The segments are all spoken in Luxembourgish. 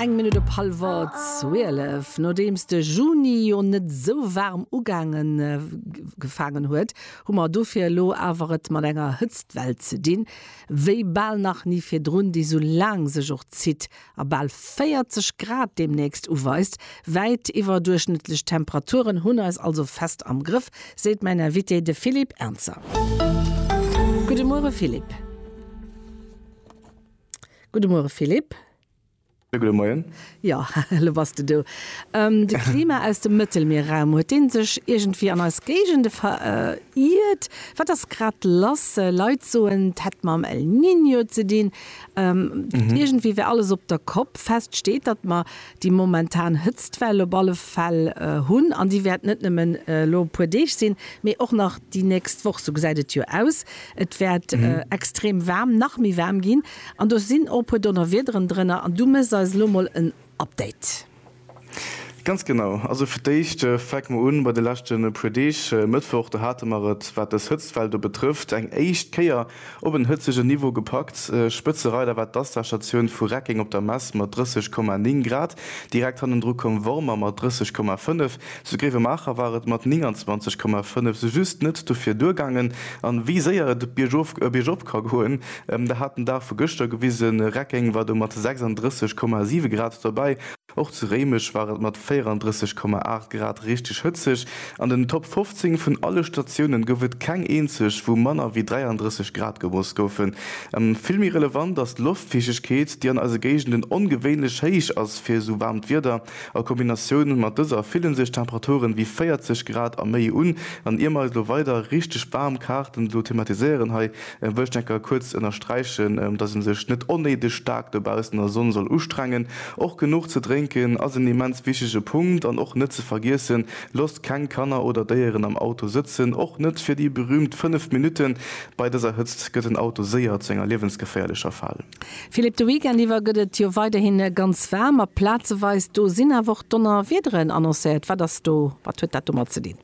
Eng Minutt op hallwer zwielef. Nodeems de Juni jo net esou waarm ugaange gefaangen huet, hu mer dofir elo awer et mat enger Hëtztwell ze dinn, wéi bal nach ni virdrun, déi sou laang sech och zitt a bal 40 Grad deemnächst uweist. Wäit iwwerduerchschnëttlech Temperaturen hunn eis also fest am Grëff, seet mäin Invité, de Philippe Ernzer. Gudde Muere Philippe. Gudde Muere Philippe. Jo, gudde Moien. Jo, elo bass de do. De Klima aus dem Mëttelmierraum, huet dee sech iergendwéi an eis Géigende veriirt? Wat ass grad lass? Leit soen, et hätt mam El Niño ze dinn. Iergendwéi wär alles op der Kopp. Fest steet, datt mer déi momentan Hëtztwell op alle Fäll hunn, an déi wäert net nëmmen elo e puer Deeg sinn, mee och nach déi nächst Woch, sou gesäit et jo aus. Et wäert extrem waarm, nach méi waarm ginn, an do sinn och e puer Donnerwiederen drënner, an du méchs eis elo mol en Update. Ganz genau, also fir d'éischt fänke mer un bei de leschte puer Deeg. Mëttwoch, do hate mer et, wat dës Hëtztwell do betrëfft, eng éischt Kéier Op en hëtzegen Niveau gepackt. Spëtzereider war d'Asta-Statioun vu Reckeng op der Mess mat 30,9 Grad. Direkt hannendru koum Wormer mat 30,5. Zu Gréiwemaacher war et mat 29,5 sou just net dofir duergaangen. A wéi séier et biergof a biergop ka goen, dat hat den Dag vu gëschter gewisen. Reckeng war do mat 36,7 Grad dobäi. Och zu Réimech war et mat 34,8 Grad richteg hëtzeg. An den Top 15 vun alle Statiounen gouf et keng eenzeg, wou manner wéi 33 Grad gemooss goufen. Vill méi relevant ass d'Loftfiichtegkeet, déi an eise Géigenden ongewéinlech héich ass fir esou waarmt Wieder. A Kombinatioun mat dëser fille sech Temperaturen wéi 40 Grad a méi un. An ier mer eis elo weider richteg waarm Kaarten elo thematiséieren hei, E wëllt enker kuerz ënnersträichen, dass en sech net onnéideg staark dobaussen an der Sonn soll ustrengen. Och genuch ze drénken ass en immens wichtege Punkt. An och net ze vergiessen, Loosst keng Kanner oder Déieren am Auto sëtzen, och net fir déi berüümt 5 Minutten. Bei dëser Hëtzt gëtt den Auto séier zu enger liewensgeféierlecher Fal. Philippe, de Weekend iwwer gëtt et jo weiderhi ganz waarm, a plazeweis do sinn awer och Donnerwiederen annoncéiert. Wat ass do, wat huet dat domat ze dinn?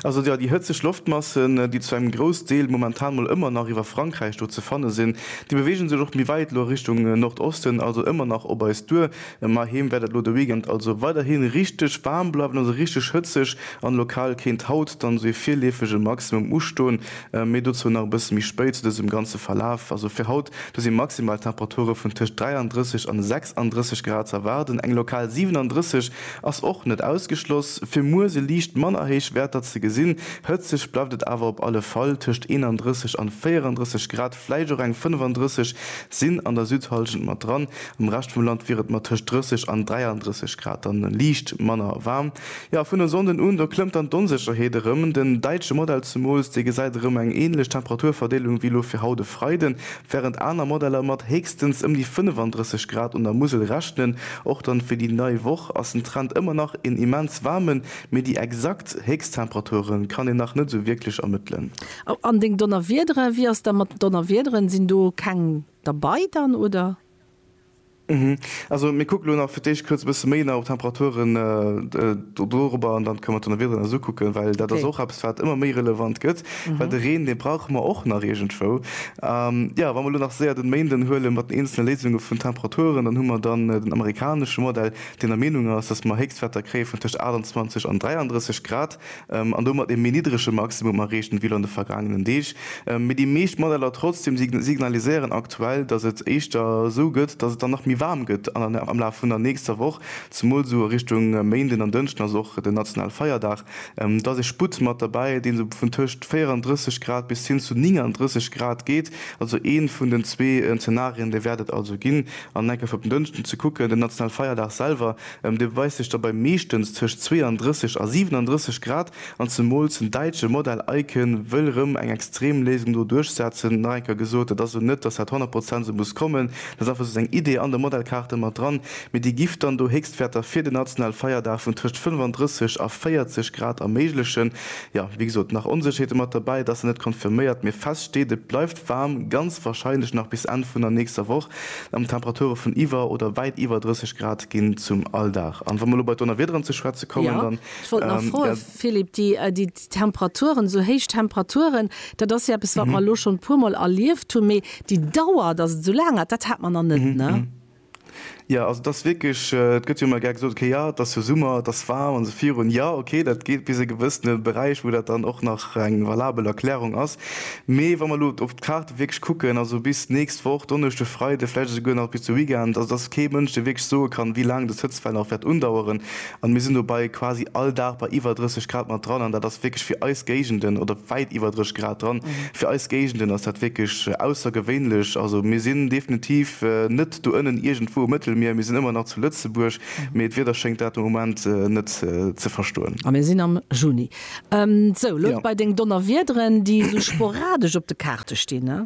Also jo, déi hëtzeg Loftmassen, déi zu engem Groussdeel momentan mol ëmmer nach iwwer Frankräich do ze fanne sinn, déi bewegen sech och méi wäit elo a Richtung Nordosten, also ëmmer nach op eis duer. Mä heem wäert et elo de Weekend also weiderhi richteg waarm bleiwen, also richteg hëtzeg, an lokal kéint haut dann esou ee virleefege Maximum ustoen. Méi dozou nach e bësse méi spéit zu dësem ganze Verlaf. Also fir haut do si Maximaltemperature vun tëscht 33 an 36 Grad ze erwaarden, eng lokal 37. Ass och net ausgeschloss, fir muer se liicht manner héich Werter ze gesinn. Hëtzeg bleift et awer op alle Fall, tëscht 31 an 34 Grad, vläicht och eng 35 sinn an der Südhallschent mat dran. Am Rescht vum Land wier et mat tëscht 30 an 33 Grad dann liicht manner waarm. Jo, vun e Sonnden un, do klëmmt dann d'Onsécherheet erëm. Den däitsche Modell zemools, dee gesäit erëm eng änlech Temperaturverdeelung wéi elo fir haut e Freiden, Während aner Modeller mat héchstens ëm déi 35 Grad un der Musel rechnen, och dann fir déi nei Woch, ass den Trend ëmmer nach een immens waarmen, mee déi exakt Héchsttemperaturen kann een nach net esou wierklech ermëttelen. An deng Donnerwiederen, wéi ass da mat den Donnerwiederen, sinn do keng derbei dann oder? Also mir kucken elo nach fir d'éischt kuerz e bësse méi nach op d'Temperaturen dorobber an dann kënne mer d'Donnewieder nach esou kucken, well dat ass och eppes wat ëmmer méi relevant gëtt, well de Reen, dee brauche mer och nach iergendwou. Jo, wa mer elo nach séier den Méinden huele mat den eenzele Léisunge vun Temperaturen, dann hu mer dann den amerikanesche Modell, deen der Meenung ass, dass mer Héchstwäerter kréie vun tëscht 28 an 33 Grad. an domat ee méi niddrege Maximum erreecht ginn, wéi lo an de vergaangenen Deeg. Mee déi meescht Modeller trotzdem signaliséieren aktuell, dass et éischter esou gëtt, dass et dann nach méi waarm gëtt am Laf vun der nächster Woch, zemol esou a Richtung Méinden an Dënschden, ass och den nationale Feierdag. Da ass ee Sputt mat derbäi, deen esou vun tëscht 34 Grad bis hin zu 39 Grad geet. Also ee vun den zwee Zenarien, dee wäert et also ginn an enk op den Dënschden ze kucken. Den nationale Feierdag selwer Ëm de weist sech dobäi meeschtens tëscht 32 a 37 Grad, an zemools den däitsche Modell Icon wëll rëm eng Extremléisung do duerchsetzen. Nach eng Kéier gesot, dat ass esou net, dass dat 100 Prozent esou muss kommen, dat ass einfach esou eng Idee an de Modellkaarte mat dran, mee déi giff dann do Héchstwäerter fir den nationale Feierdag vun tëscht 35 a 40 Grad erméiglechen. Jo, wéi gesot, nach Onsécherheete mat derbäi, et ass nach net confirméiert, mee fest steet, et bleift. waarm, ganz warscheinlech nach bis Enn vun der nächster Woch, an Temperature vun iwwer oder wäit iwwer 30 Grad ginn zum Alldag. An wa mer elo bei Donnerwiederen ze schwätze kommen, dann, ja, ech wollt nach froen, ja, Philippe, déi, déi Temperaturen, esou héich Temperaturen, dat ass jo eppes, wat mer elo schonn e puermol erlieft hunn, mee déi Dauer, datt et esou laang hat, dat hat mer nach net, ne? Jo, also et ass wierklech, et gëtt jo ëmmer gär gesot, okay, jo, et ass jo Summer, et ass waarm an esou virun. Jo, okay, dat geet bis e gewëssene Beräich, wou dat dann och nach eng valabel Erklärung ass. Mee wa mer elo op d'Kaarte wierklech kucken, also bis d'nächst Woch, Donneschde, Freide, vläicht esouguer nach bis de Weekend, also et ass kee Mënsch, dee wierklech soe kann, wéi laang dës Hëtztwell nach wäert undaueren. An mir sinn dobai quasi all Dag bei iwwer 30 Grad mat dran, an dat ass wierklech fir eis Géigenden, oder wäit iwwer 30 Grad dran, fir eis Géigenden ass dat wierklech aussergewéinlech. Also mir sinn definitiv net do ënnen iergendwou um Mëttelmier, mir sinn ëmmer nach zu Lëtzebuerg, mee d'Wieder schéngt dat de Moment net ze verstoen. A mir sinn am Juni. Sou, elo dobei deng Donnerwiederen, déi esou sporadesch op de Kaarte stinn, he?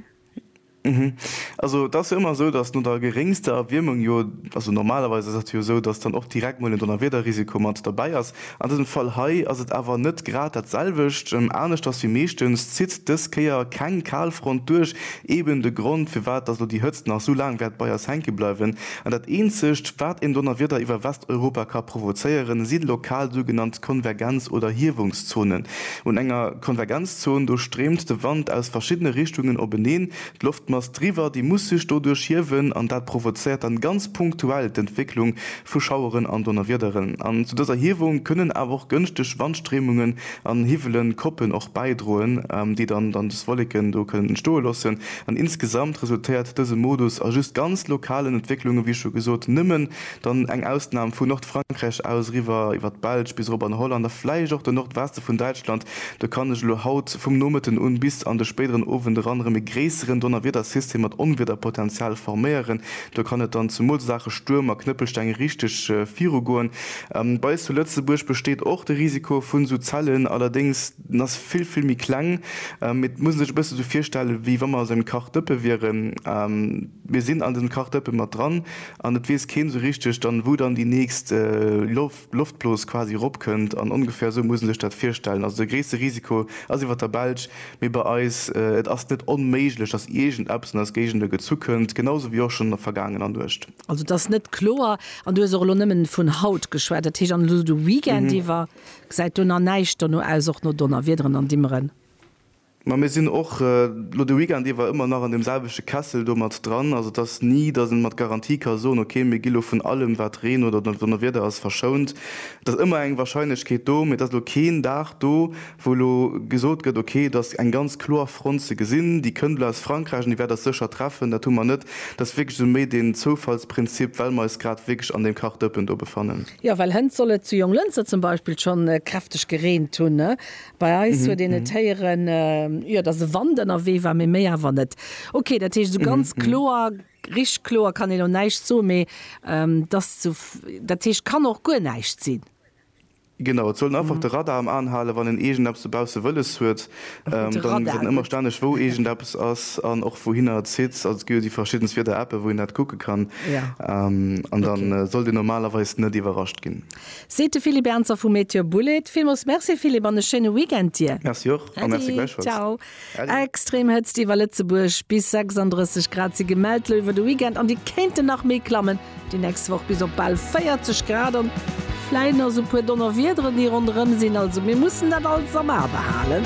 Also et ass jo ëmmer esou, datt no der geréngster Erwiermung jo, also normalerweis ass dat jo esou, datt dann och direkt mol en Donnerwiederrisiko mat derbäi ass. An dësem Fall hei ass et awer net grad dat selwecht. Aneschters wéi meeschtens zitt dës Kéier keng Kalfront duerch, eben de Grond firwat datt elo déi Hëtzt nach esou laang wäert bei eis hänke bleiwen. An dat eenzegt wat een Donnerwieder iwwer Westeuropa ka provozéieren, si lokal sougenannt Konvergenz oder Hiewungszonen. Un enger Konvergenz. Zon, do stréimt de Wand aus verschiddene Richtungen openeen, d'Loftmass driwwer, déi muss sech doduerch hiewen an dat provozéiert dann ganz punktuell d'Entwécklung vu Schaueren an Donnerwiederen. An zu dëser Hiewung kënnen awer och gënschteg Wandstréimungen an hiwwelen Koppen och bäidroen, déi dann dann des Wolleken do kënnen entstoe loossen. An insgesamt resultéiert dëse Modus a just ganz lokalen Entwécklungen, wéi scho gesot, nëmmen Dann eng Ausnam vu Nordfrankräich aus eriwwer iwwer d'Belsch bis erop an Holland a vläicht och den Nordweste vun Däitschland. Do kann ech elo haut vum Nomëtten un bis an de spéideren Owend eran erëm e gréisseren Donnerwiedersystem mat Onwiederpotenzial forméieren. Do kann et dann zumools a Saache Stuerm a Knëppelsteng richteg virugoen. Bei eis zu Lëtzebuerg besteet och de Risiko vun esou Zellen, allerdéngs den ass vill, vill méi kleng. Mee et muss een sech e bësse esou virstellen, wéi wa mer a esou engem Kachdëppe wieren. Mir sinn an dësem Kachdëppe mat dran. An et weess keen esou richteg dann wou dann déi nächst Loftblos quasi erop kënnt an ongefähr esou muss en sech dat virstellen. Also de gréisste Risiko ass iwwert der Belsch, mee bei eis, et ass net onméiglech dass iergend eppes an eis Géigende gezu kënnt, genau esou wéi och schonn an der vergaangener Nuecht. Also et ass net kloer an du hues och elo nëmmen vun haut geschwat, dat heescht an elo de Weekend iwwer gesäit do nach näischt dono aus, och no Donnerwiederen an Dimmeren? Mä mir sinn och elo de Weekend iwwer ëmmer nach an deem selwechte Kessel do mat dran. Also et ass ni, datt ee mat Garantie ka soen, okay, mir gi lo vun allem, wat Reen oder Donnerwieder ass, verschount. Et ass ëmmer eng Warscheinlechkeet do, mee et ass elo keen Dag do, wou elo gesot gëtt, okay, et ass eng ganz kloer Front ze gesinn, déi kënnt elo aus Frankräich an déi wäert eis sécher treffen. Dat hu mer net. Dat ass wierklech esou méi deen Zoufallsprinzip, well mer eis grad wierklech an deem Kachdëppen do befannen. Jo, well hënt soll et zu Jonglënster zum Beispill schonn kräfteg gereent hunn. Bei eis huet een et héieren, jo, dass e Wand ënnerwee war, mee méi awer net. Okay, dat heescht, esou ganz kloer, richteg kloer kann een elo näischt soen, mee et ass zu, dat heescht, kann och guer näischt sinn. Genau, et soll een einfach de Radar am Aen halen, wann een iergendeppes dobausse wëlles huet, dann gesäit een ëmmer stänneg, wou iergendeppes ass an och wouhinner et zitt. Also et gi jo déi verschiddenst Wieder-Appe wou een dat kucke kann an da sollt een normalerweis net iwwerrascht ginn. Seet de Philippe Ernzer vu Meteor Bullet. Villmols Merci Philippe an e schéine Weekend dir. Merci och a merci gläichfalls. Äddi, ciao. Extrem Hëtzt iwwer Lëtzebuerg, bis 36 Grad si gemellt lo iwwer de Weekend an déi kéinten nach méi klammen déi nächst Woch bis op bal 40 Grad an vläit nach sou puer Donnerwiederen déi ronderëm sinn. Also mir mussen dat alles am A behalen.